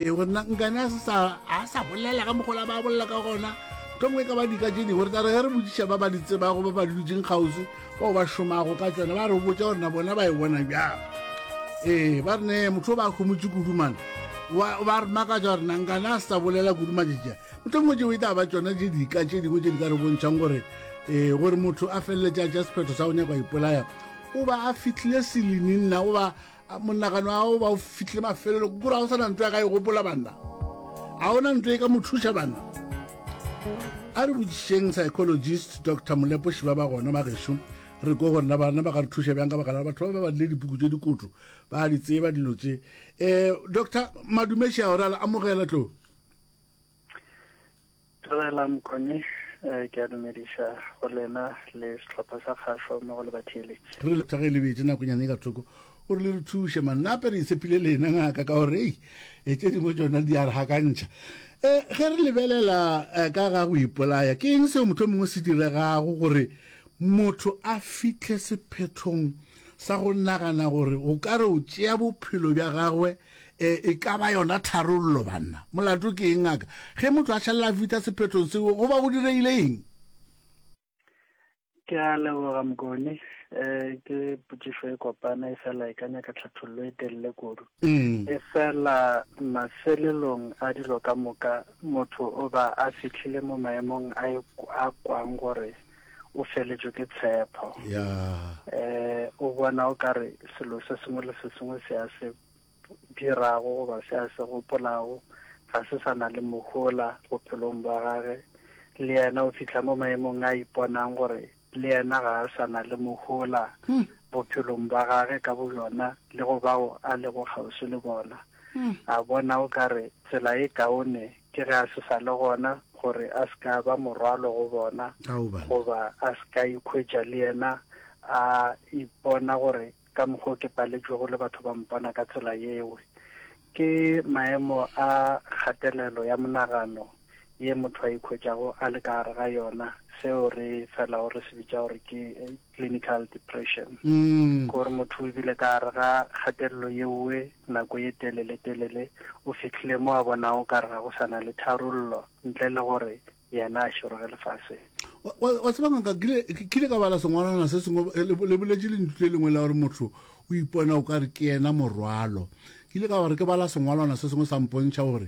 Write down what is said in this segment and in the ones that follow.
ee gore na nkane a sa bolela ka mogola ba bolela ka gona tlongwe ka ba dika tse dingwe re tla re ge re botsiša ba ba di tsebago ba ba di dutseng kgausi bao ba šomago ka tsone ba re botsa gore na bona ba e bona bjang ee ba re ne motho o ba khomotse kudumana ba re makatsa gore nankane a sa bolela kudumajeja motlhongwe tšeo e tla ba tsona tse dika tse dingwe tse di ka re bontšhang gore um gore motho a feleletse a ja sephetho sa go nyakwa ipolaya o ba a fitlhile seleninna o ba monagano ao ba o fitlhile mafelelo kore ga o sana ntlo ya ka e gopola banna ga ona ntlo e ka mo thuša banna a re botsišeng psychologist dr molepo šiba ba gona magešo re ko gorena bana ba ka re thuša bjang ka baka la batho ba ba badile dipuku tse dikoto ba di tseba dilo tse um doctor madumeši a gore a amogela tlo Tshelela Mokone eh, ke a dumediša go lena le setlhopha sa kgašo mo go le batheeletši re le tsage lebetse nakonyane ka thoko o re le re thuše manape re itshepile lena ngaka ka gore ei e tse dingwe tsona di a re gakantšha um ge re lebelela eh, ka ga go ipolaya ke eng seo motlho mongwe se diregago gore motho a fitlhe sephethong sa go nagana gore o ka re o tšea bophelo bja gagwe E, e ka ba yona tharollo, banna. Molato ke eng, ngaka? Ge motho a šalela a fihla sephethong seo, go ba go direile eng? Ke a leboga, Mokone. E, ke potšišo e kopana, e fela e ka nyaka tlhathollo e telele kudu. Mm. E fela mafelelong a dilo ka moka, motho o ba a fihlile mo maemong a e, a kwang gore o feletšwe ke tshepo eh o bona o ka re selo se sengwe le se sengwe se a se dirago goba se a se gopolago ga se sa na le mohola bophelong bwa gage le yena o fitlha mo maemong a iponang gore le yena ga a sa na le mohola hmm. bophelong bwa gage ka boyona le go bao a lego kgauswi le bona hmm. a bona o ka re tsela e kaone Ke ge a se sa le gona, gore a se ka ba morwalo go bona, goba a se ka ikhwetša le yena a ipona gore ka mokgwa o ke paletšwego le batho ba mpona ka tsela yeo. Ke maemo a kgatelelo ya monagano ye motho a ikhwetšago a le ka gare ga yona, seo re felago re se bitša gore ke clinical depression mm. gore motho o bile ka gare ga kgatelelo yeoe nako ye telele telele o fitlhile mo a bonago ka re ga go sana le tharollo ntle le gore yena a šoroge lefase wa tseba ngaka kile ka bala sengwalwana se sengwe eh, le boletše lentlo le lengwe la gore motho o ipona o ka re ke yena morwalo ke ile ka gore ke bala sengwalwana se sengwe sa mpontšha gore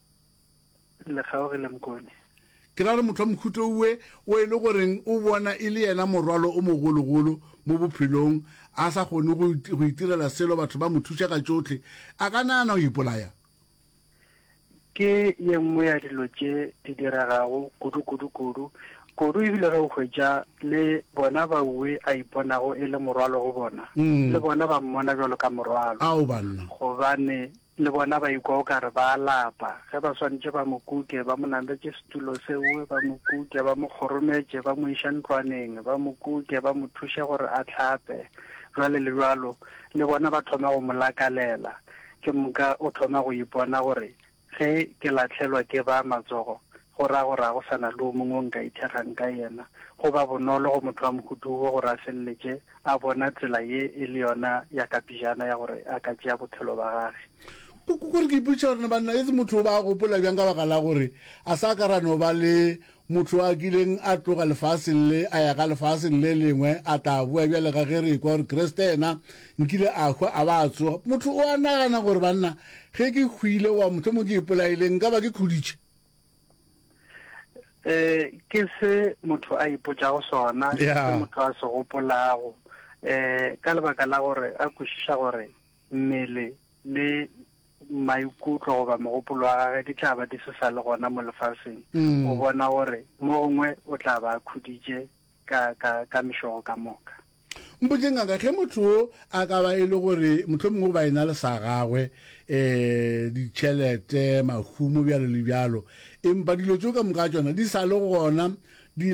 le kgaogile Mkone. Ke ra re motho wa mohuto owe o e le goreng o bona e le yena morwalo o mogologolo mo bophelong, a sa kgone go go itirela selo, batho ba mo thuša ka tšohle, a ka nagana go ipolaya? Ke ye nngwe ya dilo tše di diregago kudu kudu kudu kudu e bile ge o hwetša le bona baowe a iponago e le morwalo go bona, le bona ba mmona bjalo ka morwalo, gobane Le bona ba ikwa o ka re ba a lapa, ge ba swanetše ba mo kuke, ba mo nametše setulo seo, ba mo kuke, ba mo kgorometše, ba mo iše ntlwaneng, ba mo kuke, ba mo thuše gore a hlape, bjalo le bjalo. Le bona ba thoma go mo lakalela. Ke moka o thoma go ipona gore, Ge ke lahlelwa ke ba matsogo, go ra gore ga go sa na le o mongwe o nka ithekgang ka yena. Go ba bonolo go motho wa mohutu wo gore a feleletše a bona tsela ye e le yona ya ka pejana ya gore a ka tšea bophelo ba gage. Ko, ko, kore ke ipotšiša gore na banna etse motho o ba a gopola bjang ka baka la gore a sa ka ra no ba le motho a kileng a tloga lefaseng le a ya ka lefaseng le lengwe a tla boa bjale ka ge re ekwa gore Kriste yena nkile a hwa a ba a tsoga. Motho o a nagana gore banna ge ke hwile wa mohlomongwe ke ipolaile nka ba ke khuditše. eh ke se motho a ipotšago sona ke motho a se gopolago eh ka lebaka la gore a kwešiša gore mmele le maikutlo goba mogopolo wa gage di tla ba di se sa le gona mo lefaseng mm. o bona gore mo gongwe o tla ba khuditše ka, ka, ka mešogo ka moka. Mpotše, ngaka, ge motho wo a ka ba e le gore mohlomongwe o ba e na le sa gagwe, um ditšhelete, mahumo, bjalo le bjalo, empa dilo tšeo ka moka tšona di sa le gona, di